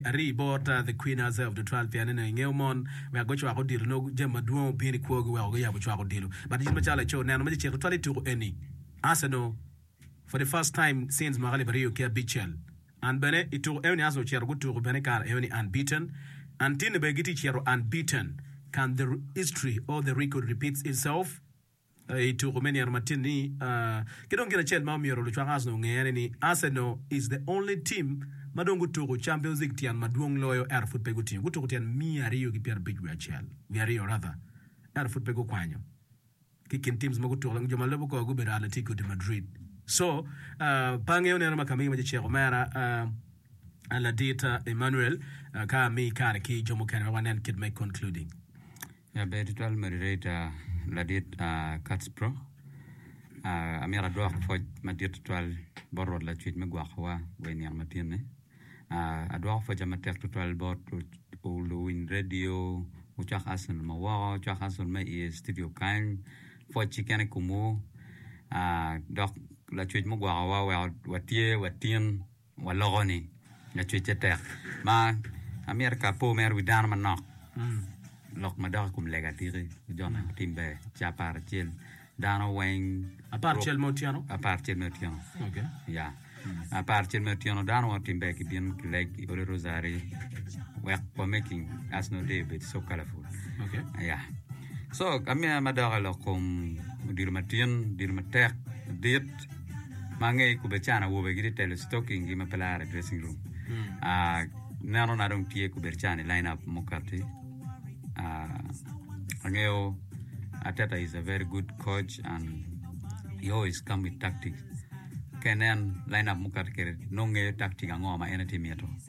Rii bor ta The Queen Aze of the Twelve pien ene ingeyo mon wek gucwak odilo nongo jami madwong obino i kwogi weko guyabo cwak odilo but in macalo laco neno ma cecek tutwal ituku eni Arsenal for the first time since mwaka alip aryo ki abicel and bene ituku eoni Arsenal ocito gutuku bene ikare eoni unbeaten and tinne bene gitye cito unbeaten can the history or the record repeats itself? i tuku me nino matin-ni ki dong gin acel ma omyero lucwak Arsenal onge en aye ni Arsenal is the only team ma dong gutuku Champions League tyen madwong loyo ento pud pe gutingo. Gutuku tyen miya aryo ki pyerabic wiye acel, wiye aryo rather, ento pud pe gukwanyo. Ki i kin teams ma gutuku dong jo ma lubo kor gubedo Atletico de Madrid. So, pe angeyo neno ma ka amiyi mac icek omera ladit Emmanuel ka amiyi kare ki jo mukene wek wanen kit me concluding. Laber tutwal moderator ladit Kacpro, amyero adwok pwoc madit tutwal bot Rwot Lacwec me gwoko wa wa i nino matyen ni. Adwoko pwoca matek tutwal bot luwiny radio, wucwak Arsenal ma woko, wucwak Arsenal ma i studio kany, pwoc keken i kom wu, dok Lacwec mugwoko wa weko watye watyen. Waloko ni, Lacwecce tek. Ma amyero ka apo mere wi dano manok, lok ma dok i kom lega tiki ki jo ma gutim ber ci apar acel. Dano weng. Apar acel me otyeno? Apar acel me otyeno. Okay. Ya. Apar acel me otyeno dano weng otim ber ki bino ki leg i odi rosary wek wa making Arsenal Day obed so colorful. Okay. Ya. Co amiya ma dok i lok kom odilo matin, odilo matek, madit ma ange i kubeccan awobe gitye telo stocking gi ma pe laro i dressing room. Ah, neno na dong tye kubeccan i line up mukati. Ah, angeyo Arteta is a very good coach and he always come with tactics. Ka inen line up mukati kede nongo ngeyo tactic ango ma en aye tye mito.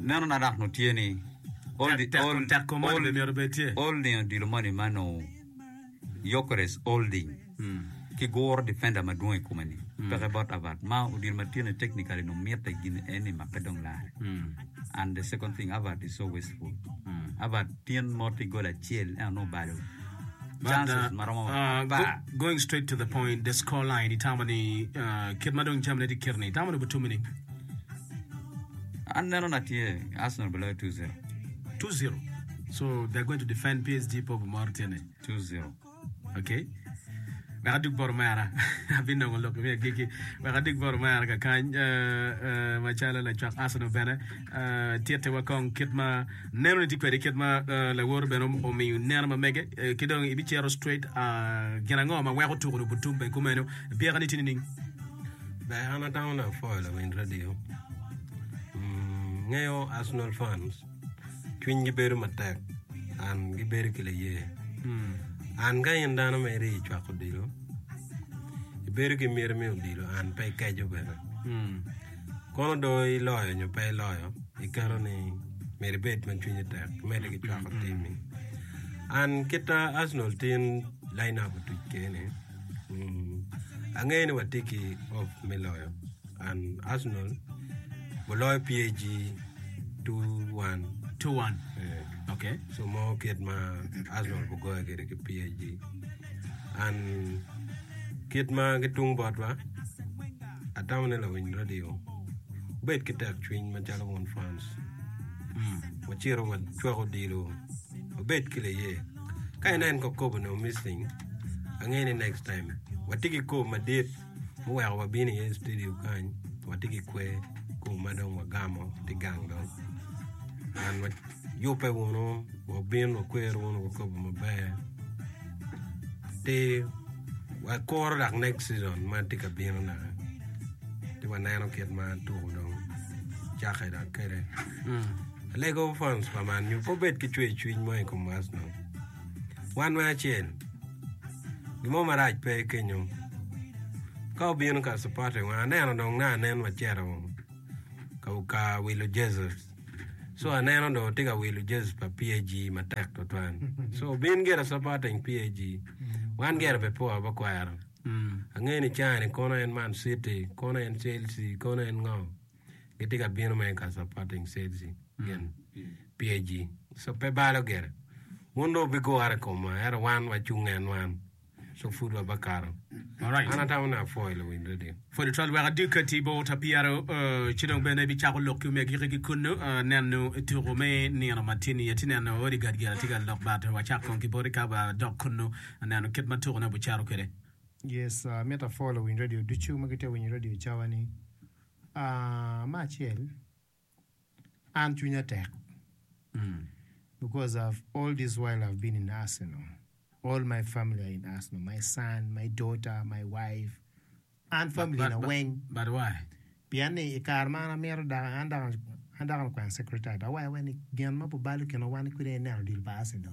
Meno na dok nutye ni, Olding odilo moni ma nongo Gyökeres Olding ki guro difenda madwong i kome-ni peke bot Avard ma odilo matino technically nongo mitte gin en ni make dong lare and the second thing Avard is so wasteful Avard tin mot i goal acel ento nongo obalo chances ma romo apar going straight to the point the score line itamo ni kit ma dong jamine tye kit-ni itamo ni butum-mi ni An neno na tye Arsenal bi loyo 2-0. 2-0. So they're going to defend PSG po bimoro tye ne. 2-0. Okay. Wek adug boro mera. Abinongo lok me agiki. Wek adug boro mera kakany uh, uh, macalo lacwak Arsenal bene uh, tyette wa kong kit ma neno ni tye kwede kit ma uh, lawoto bene om- omiyo neno ma mege uh, ki dong ibicero straight uh, gin ango ma weko tuko ni obutum bene kumeno pyeka ni tye nining? Ber an adano na apwoyo lamin radio ngeyo Arsenal fans cwiny gi bedo matek and gi bedo ki laye an ka in dano ma iri i cwako odilo i bedo ki myero me odilo and pe ikeco bene kono do iloyo nyo pe iloyo i keto ni myero ibed ma cwinyi tek imede ki cwako timi and kita Arsenal tin line up otuc kene. Angeyo ni watye ki hope me loyo and Arsenal guloyo PSG 2-1 2-1. eh, Okay. so mo kit ma Arsenal gugoyo kwede ki PSG and kit ma gitung botwa atamo ni lawiny radio wubed ki tekcwiny macalo wun fans Mm. wacito wacwak odilo Obed ki liye. Ka inen kong kobo nongo miss thing ange ni next time watye ki kobo madit muweko wabino iye studio kany watye ki kwe kobo ma dong wagamo tye gang dong and wa yube wunu wabin wakwero wunu wa kobo maber ti wakuro dok next season ma tye ka bino naka ti waneno kit ma tuku dong cake dok kede. Alego fans pa man nyo pe obed ki cwer cwiny mo i kom Arsenal. Wan me acel, gimo marac pe kenyo. Ka obino ka supporter wa aneno dong na anen macito ka ka wilo Jesus. So aneno do tye ka wilo Jesus pa PAG matek tutwan. So bin gire supporting PAG. Wan gire pe poa ba kwero. Ange ni cani kono en Man City, kono en Chelsea, kono en ngo. gitye ka bino ma eka supporting said she gin pye ji so pe balo gire wun dong wubigure i komwa ento wan wacung en wan so pud wabakato Alright. an atamo ne apwoyo luwiny radio For the twelve weka dika ti bo ta piyaro eh, ci dong bene bi cako lok ki omegi ki kunu eh, neno tuku me nino matin i ti neno odi gad gira ti ga lok bat wa cak kong ki boti ka ba dok kunu neno kit ma tuku ne bu caro kwede. Yes, amito apwo luwiny radio ducu ma gitye winyo radio cawa ni. Me acel an cwinya tek because of all this while I've been in Arsenal, all my family are in Arsenal, my son, my daughter, my wife, an family na weng. But why? Pien ni i kare ma an amito dok an dok an dok an okwena secretary dok waya waya ni gin ma bubalo kinwa wan kwede aye neno odilo pa Arsenal.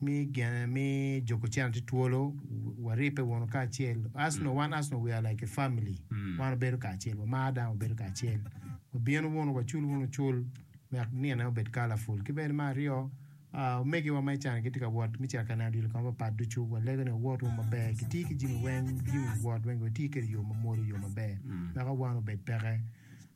Mi gene mi Joko Chan tye twolo waribbe wunu kacel Arsenal wan Arsenal we are like a family wan wabedo kacel wamar dang wabedo kacel wabino wunu wacul wunu cul wek nino ne obed colorful ki bene me aryo omegiwa ma ican gitye ka wot me cito ka neno odilo kong papat ducu walego ni wawot wunu maber kiti ki jami weng jami wot weng wati kwede i yo mamwonya i yo maber weko wan obed peke.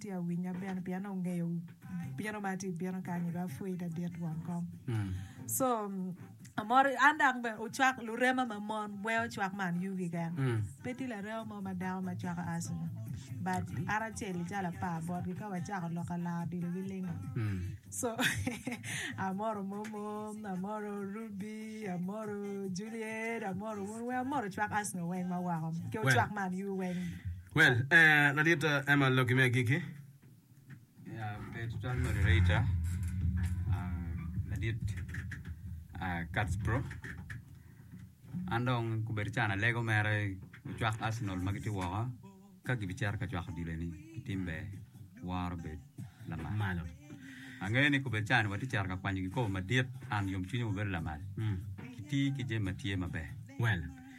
Tye awinya bene pien ongeyo bino ma atye bino kany dok apwoyi te dit won kom so amor an dok bene ocwak lurema ma mon wee ocwak man yugi keken pe tye larema mo ma dako ma cwako asthma but an acel calo apar botgi ka wacako lok alar odilo gi lingo so amoro momo amoro rubi amoro juliet amoro wun weng amoro cwak asthma weng ma woko ki ocwak man yugi weng. Well, eh, ladit eh, Emma Logi me agikki. Ya, pe tutwal moderator. Ah, ladit ah, Catsbro. An dong kubedo can alego mere ocwak Arsenal ma gitye woko ka gibicito ka cwako odilo eni ki tim ber woro bed lamal. Malo. Angeyo ni kubedo can watye cito ka kwanyo kikopo madit an yomcwinywa bedo lamal. Mm. Kiti ki jami ma tye maber. Well,